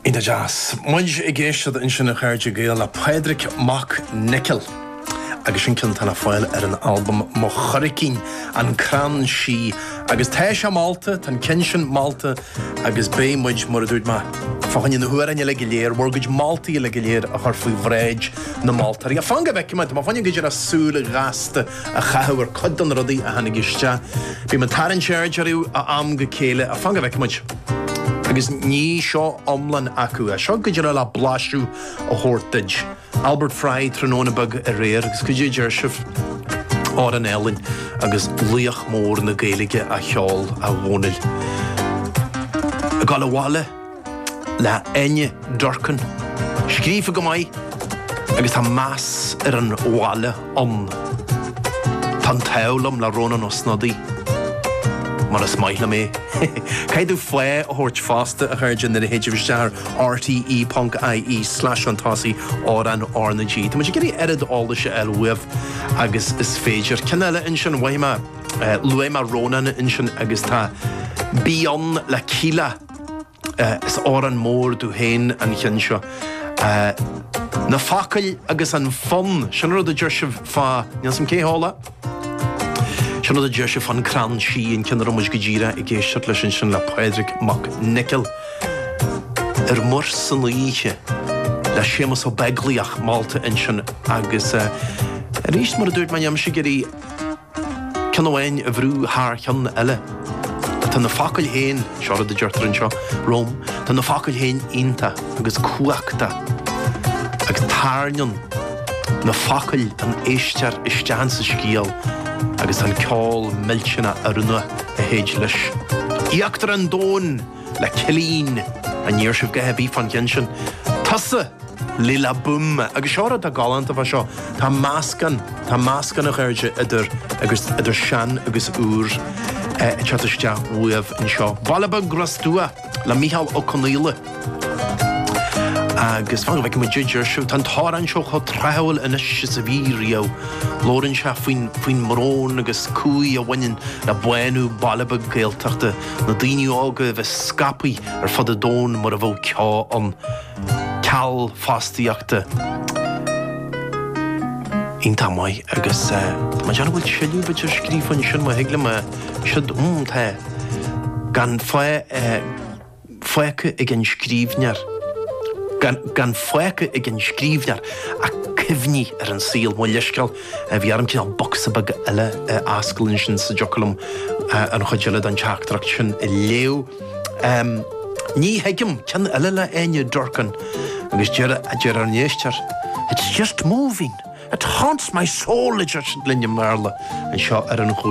An-deas, muid ag éisteacht ansin a chairde Gael le Pádraic Mac Niocaill agus sin ceann atá le fáil ar an albam Mo Churaichín, An Crann Sí agus tá sé molta, tá an ceann sin molta agus beidh muid, mar a dúirt mé, fá choinne na hamhráin eile go léir, bhur gcuid moltaí eile go léir a chur faoi bhráid na moltóirí. Fan go bhfeice mé, tá mé fá choinne go díreach súil ghasta. a chaitheamh ar chuid de na rudaí a tháinig isteach. Bím ag tarraingt aird orthu ó am go chéile, ach fan go bhfeice muid. Agus ní seo iomlán acu é. Seo go díreach le blaiseadh a thabhairt duit. Albert Fry, Tráthnóna Beag Aréir, agus caidé a deir sibh, amhrán álainn, agus laoch mór na Gaeilge á cheol, a Dhónaill. Ag dul abhaile? le hÁine Durkin, scríofa go maith agus tá meas ar an bhaile ann. Tá an t-ádh liom le Rónán Ó Snodaigh, mar is maith liom é. Caithfidh tú fáth a thabhairt fosta, a chairde, nuair a théitear isteach ar rte.ie slash fhantasy amhrán RnaG. Tá muid ag iarraidh oiread eolais a fháil uaibh agus is féidir. Ceann eile ansin, luaigh mé Rónán ansin agus tá Bí Ann le Kíla, Is amhrán mór domh féin an ceann seo. Na focail agus an fonn, sin rud a deir sibh fá, níl 'fhios a'm cé a mhol é, sin rud a deir sibh fán Crann Sí, an ceann a raibh muid go díreach ag éisteacht leis ansin le Pádraig Mac Niocaill. Ar Mhuir san Oíche le Séamus Ó Beaglaoich, molta ansin agus arís mar a dúirt mé, níl mise ag iarraidh. Ceann amháin a bhrú thar cheann eile. Tá na focail féin, seo rud a deirtear anseo, romham, tá na focail féin iontach agus cumhachtach. Agus tairneann na focail an t-éisteoir isteach sa scéal agus tá an ceol millteanach oiriúnach a théid leis. Íochtar an domhain! le Cillín, ní deir sibh a dhath ar bith fán gceann sin? Tusa! le La Boom! Agus seo rud atá galánta fá seo, tá meascán, tá meascán a chairde idir, agus, idir sean agus úr ag teacht isteach uaibh anseo. Baile Beag Ros Dumha le Micheál Ó Conaola. Agus fan go bhfeice muid caidé a deir sibh, tá an t-amhrán seo chomh tráthúil anois is a bhí riamh. Labhrann sé faoin, faoin mbrón agus cumhaidh a bhaineann le bánú Baile Beag Gaeltachta. na daoine óga a bheith scaipthe ar fud an domhain mar a bheadh ceo ann, ceal fostaíochta iontach maith agus mé ag amharc an bhfuil tuilleadh ar bith scríofa ansin má thig liom, sílim, tá, gan fágtha ag an scríbhneoir, gan fágtha ag an scríbhneoir ach cuimhní ar an saol, mo leithscéal. Bhí orm cineál bocsa beag eile a fháscadh ansin sa dtiocfadh liom an chuid eile den teachtaireacht sin a léamh. Ní thuigim ceann eile le Enya Durkin agus deir a deir ár n-éistear, It's just moving, it haunts my soul, a deir sí linn i mBéarla anseo ar an